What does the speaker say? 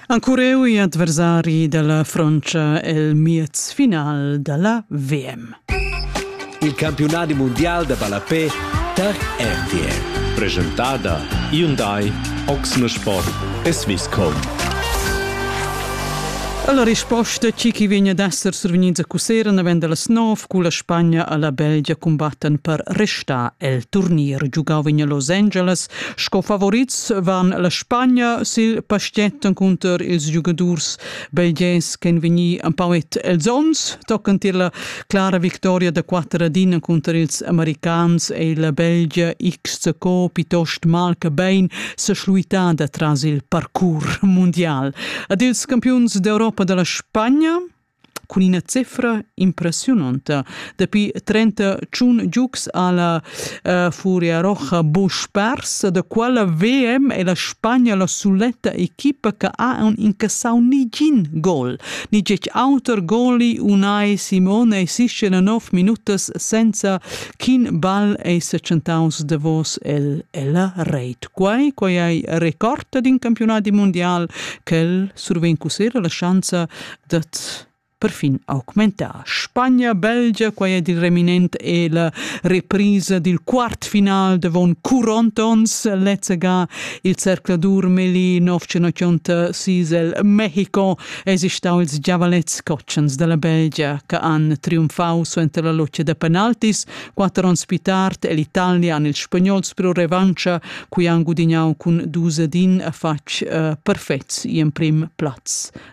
Ancureu i adversari dalla Frontscha el miez final dalla VM. Il campiunadi mundial da ballapé tar RTL. Presentada Hyundai, Oxne Sport e Swisscom. La risposta chi chi vegna d'esser survegnids a Cusera naven dallas nov cu la Spagna alla Belgia cumbattan per restar el turnier giugau vegna Los Angeles Sco favorits van la Spagna sil pastget encunter ils giugadurs belgers ch'en vegni empauet els ons, toccant tier la clara victoria da quatter ad in encunter ils americans ei la Belgia XCO piuttost mal che bein seschluitada tras il parcours mundial. Ad ils campiuns d'Europa dalla Spagna cun ina cifra impressiunonta. Dapi trenta tschun giugs ha la uh, Furia Roja buc pers, da quella VM è la Spagna la suletta equipa che ha un incassau nigin gol. Ni gec auter goli unai Simone e Siscena nov minutas senza ch'in ball ei secentaus davos el ella reit. Quai, quai ei recorda d'in campionat mundial che surven cusera la schanza dad perfin augmentar. Spagna, Belgia, quai è il reminent e la reprisa dil quart final davon Curontons, lezzega il cercladur Meli 1986 el Mexico estau ils giavalets cotschens della Belgia che han triumfau suenter la loccia da penaltis quatter onns più tard e l'Italia han ils spagnols pro revancha cui han gudignau cun dus ad in a fatg uh, perfets in prim plaz.